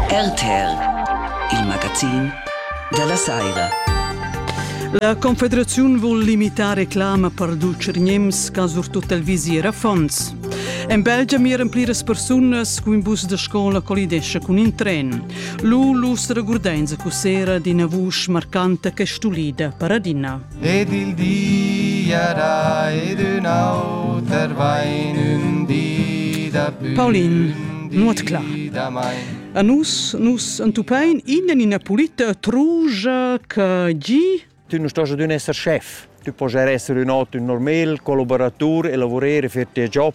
RTL, il magazin della saira. La Confederaziun vul limitar reclama per dulce gnems ca surtut el visier affons. En Belgia miran pliras persunas cu in bus da scola collidesce cun in tren. Lu lustra gurdenza cussera d'ina vusch marcanta che stulida per adina. ed il di era ed ün auter vain ün di da pü. Paulin, nuot clar. A nus, nus entupain innen ina pulita trugia che gi... Tu non stai ad un esser chef, tu puoi essere un auto un normal, collaboratur e lavorare per tes job.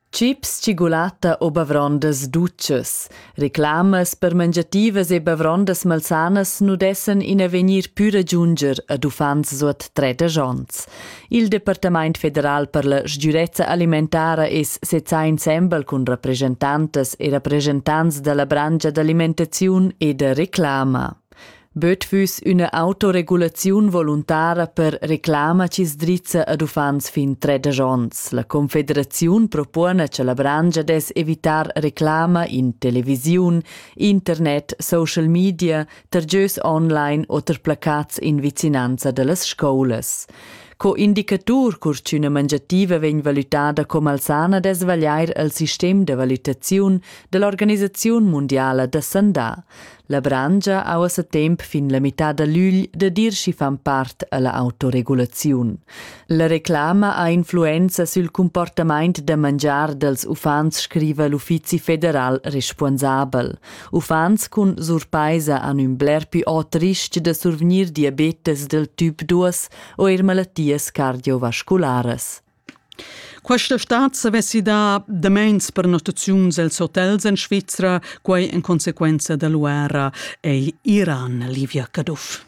Chips, tschigulatta u bavrondas dutschas. Reclamas per mangiativas e bavrondas malsanas nu dessan in avegnir pü ragiunger ad uffants suot tredesch ons. Il Departamaint federal per la sgürezza alimentara es sezzà insembel cun rapreschantantas e rapreschantants da la branscha d'alimentaziun e da reclama. Böt füss üna autoregulaziun voluntara per reclama chi's drizza ad uffants fin tredesch ons. La Confederaziun propona cha la brangia dess evitar reclama in televisiun, internet, social media, tergieus online oter placats in vicinanza da las scoulas. Co indicatur cur ch'üna mangiativa vegn valutada com alzana dess vagliair al sistem da valutaziun da l'Organisaziun mundiala da sandà. La branscha ha ussa temp fin la mitad da l'ügl da dir schi fan part alla autoregulaziun. La reclama ha influenza sül comportamaint da mangiar dels uffants, scriva l'Uffizi federal responsabel. Uffants cun surpaisa han ün bler più ot risch da survgnir diabetes del typ 2 o eir malattias cardiovascularas. Questa stad savessi dar damains per notaziuns els hotels en Svizra, quai en consequenza da l'uera ei Iran Livia Caduff.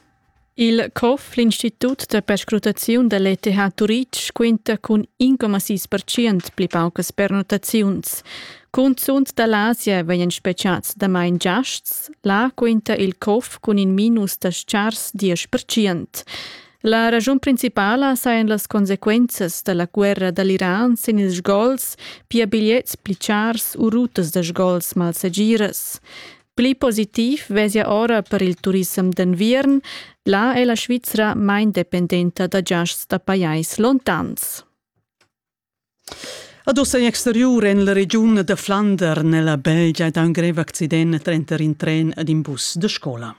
Il COF, l'Institut da perscrutaziun da l'ETH Turitg, quinta cun 1,6% pli paucas pernotaziuns. Cunzunt da l'Asia vegnan specials damain giasts. Là quinta il COF cun in minus da chars 10%. La ragiun principala sajan las consequenzas da la guerra da l'Iran sin ils sgols, pia bigliets pli chars u rutas da sgols malsegiras. Pli positiv vesia ora per il turissem d'enviern. Là è la Svizra main dependenta da giasts da pajais lontans. Ad ussa in exteriur en la regiun da Flander nella Belgia da un grev accident trenter in tren ed in bus de scola.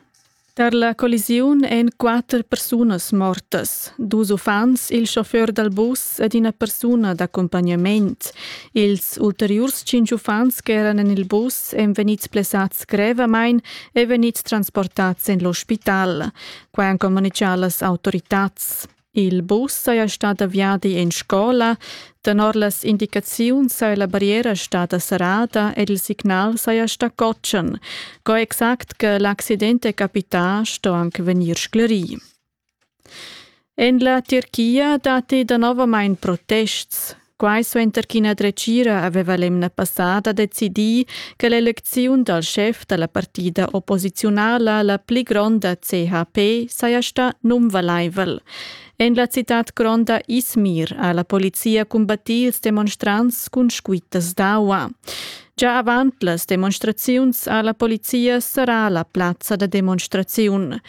Tar la collisiun èn quatter persunas mortas, dus uffants, il chauffeur dal bus ed ina persuna d'accumpagnament. Ils ulteriurs cinq uffants che eran en il bus èn vegnids plessads grevamain e vegnids transportads en l'ospital. Quai han communitgà las autoritads. Il bus saja stat da viadi en scola. Tenor las indicaziuns saja la barriera stada serrada ed il signal saja stà cotschen. Co exact che l'accident è capità sto anche vegnir sclerì. En la Tirchia datti danovamain protests. Quai suenter ch'ina dretgira aveva l'emna passada decidì che l'elecziun dal schef da la partida opposiziunala la pli gronda CHP saja stà nunvalaivel. En la citad gronda Izmir ha la polizia cumbattì ils demonstrants cun squittas d'aua. Già avant las demonstraziuns ha la polizia serrà la plazza da demonstraziun.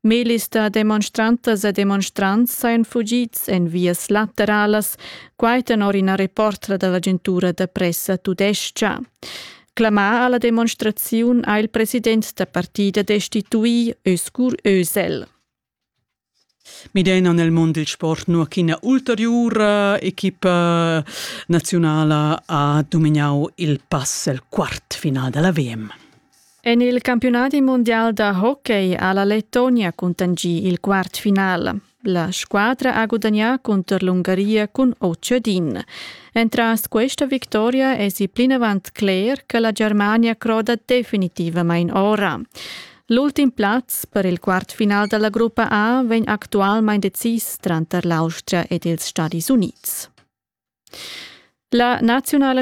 Melis da demonstrantas e demonstrants sajan fugids en vias lateralas, quai tenor ina reportra da l'agentura da pressa tudestga. Clamà a la demonstraziun ha il president da partida destituì Öskur Özel. Midena nel mondo del sport nu ch'ina ulteriura equipa nazionala ha dominau il pass al quart final della VM. En il campiunadi mundial da hockey ha la Lettonia cuntanschì il quart final. La squadra ha gudagnà cunter l'Ungaria cun Otschedin. Entras questa victoria èsi plinavant cler che la Germania croda definitivamain ora. L'ultim plaz per il quartfinal dalla gruppa A vegn actualmain decis tranter l'Austria ed ils Stadis Unids. La naziunala